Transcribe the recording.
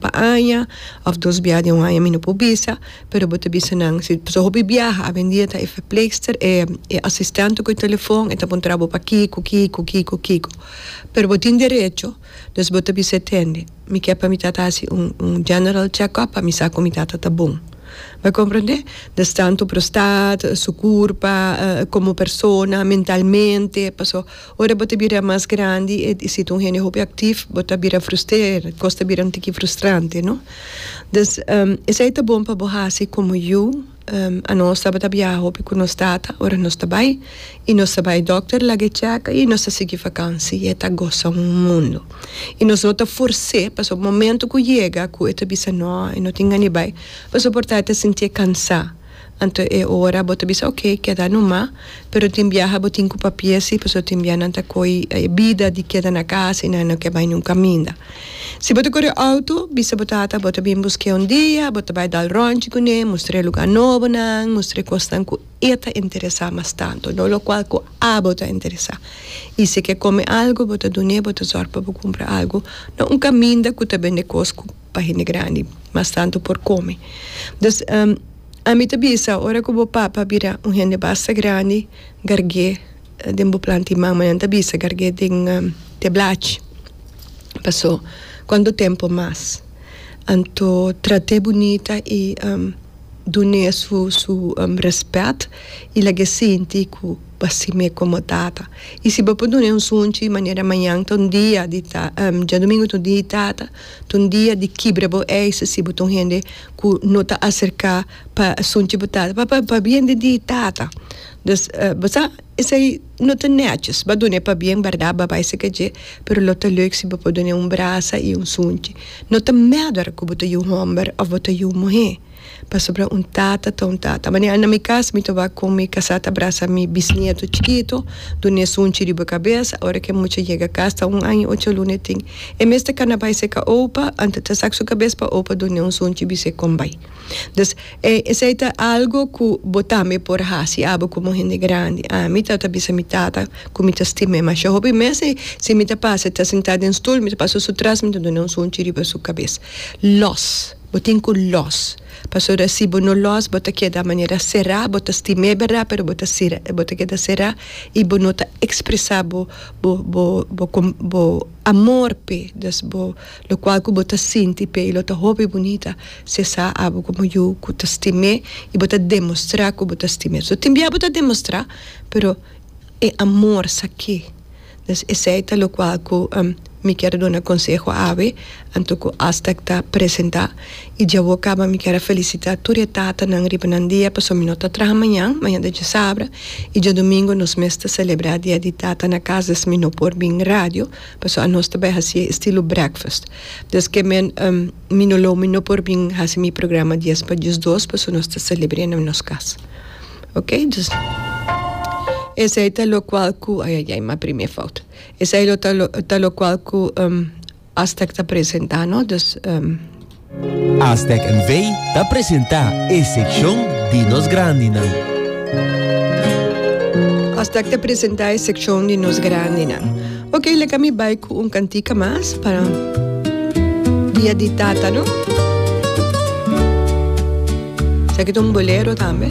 Pa aña of dos biaha den un aña mi no por bisa, pero bo ta bisa nan si pasobra hopi biaha awendia ta e verpleegster e e asistente ku e telefon e ta puntra bo pa kiko kiko kiko kiko. Pero bo tin derecho dus bo ta bisa e tende mi ke pa mi tata hasi un un general check up pa mi sa ku mi tata ta bon. Mi komprende? Des tanto prostat, su kurpa, komo persona, mentalmente paso. Ora bo ta bira mas grandi e di situ un hende hopi aktif bo ta bira frusteerd, kos ta bira un tiki frustrante no. Dus esei ta bon pa bo hasi komo yu anos tabata biaha hopi ku nos tata ora nos ta bai i nos ta bai dòkter laga e chèka i nos ta sigui vakansi i e ta gosa un mundu i nos no ta fors'é pasobra momentu ku yega ku e ta bisa nò e no tin ganibai pa soportá e ta sintié kansá. Anto e ora bo ta bisa ok keda numa pero tin biaha bo tin cu papia si pasobra tin biaha nan ta coy e bida di keda na casa y nan no ke bay nun caminda. Si bo ta core auto bisa bo tata bo ta bin busque un dia bo ta bay dal ronchi cune mustr'e lugar nobo nan mustr'e cosnan cu e ta interesa mas tanto no locual cu abo ta interesa y si e ke come algo bo ta dune bo ta zorg pa bo cumpra algo na un caminda cu ta bende cos cu pa hende grandi mas tantu por kome dus ami ta bisa ora ku bo papa bira un hende basta grandi garg'é den bo planti mama nan ta bisa garg'é den te blachi paso kuantu tempu mas anto trat'é bunita i dun'é su su rèspèt i lag'é sinti ku bo a simi e komo tata i si bo por dun'é un sunchi manera mañan ta un dia di ta djadumingu ta un dia di tata. Ta un dia di kibra bo eis si bo ta un hende ku no ta aserká pa asunchi bo tata, p'e pabien di di tata. Dus, bo sa esei no ta nètjis, bo a dun'é pabien bèrdat, bo a bai seka dje, pero lo ta lèuk si bo por dun'é un brasa i un sunchi. No ta mèder ku bo ta yu un hòmber òf bo ta yu un muhé. Pasobra un tata ta un tata. Manera na mi cas mi ta wak con mi casa ta abraza mi bisnieto chikito, duna e sunchi riba e cabeza. Ora cu e mucha yega cas ta un aña y ocho luna e tin. E mester cana bay si e ca opa, antes ta saca su cabeza pa opa dun'e un sunchi bisa e con bay. Dus, e esey ta algo cu bo tambe por haci abo como hende grandi. Ami ta ta bisa mi tata cu mi ta stima e masha hopi mester si mi ta pasa e ta sinta den stoel mi ta pasa su tras mi ta duna un sunchi riba su cabeza. Los. Bo tin cu los, pasobra si bo no los bo ta keda manera cerá, bo ta stim'é berdad, pero bo ta cira, bo ta keda cerá i bo no ta expresa bo bo bo bo com bo amor p'e, dus bo lo cual cu bo ta sinti p'e i lo ta hopi bunita si sa abo como yu cu ta stim'é i bo ta demostrá cu bo ta stim'é. So tin bia bo ta demostrá, pero. E amor sakí. Pues esei ta lokual ku mi kier a duna konseho awe anto ku Aztec ta presentá. I dje awo kaba mi kier a felisitá tur e tatanan riba nan dia pasobra mi no ta traha mañan, mañan ta dje sabra, i djadumingu nos mes ta selebrá Dia di Tata na kas des mi no por bin radio pasobra anos ta bai hasié estilo breakfast. Des ke men mi no lo mi no por bin hasi mi programa dies pa diesdos pasobra nos ta selebr'é na nos kas. Ok, dus esei ta lokual ku ayayay mi a primé fout. Esei lo ta lo ta lokual ku um Aztèk ta presentá no, dus um. Aztèk NV ta presentá e sekshon di nos grandinan. Aztèk ta presentá e sekshon di nos grandinan. Ok, leka mi bai ku un kantika mas pa Dia di Tata no. Esaki ta un bolero tambe.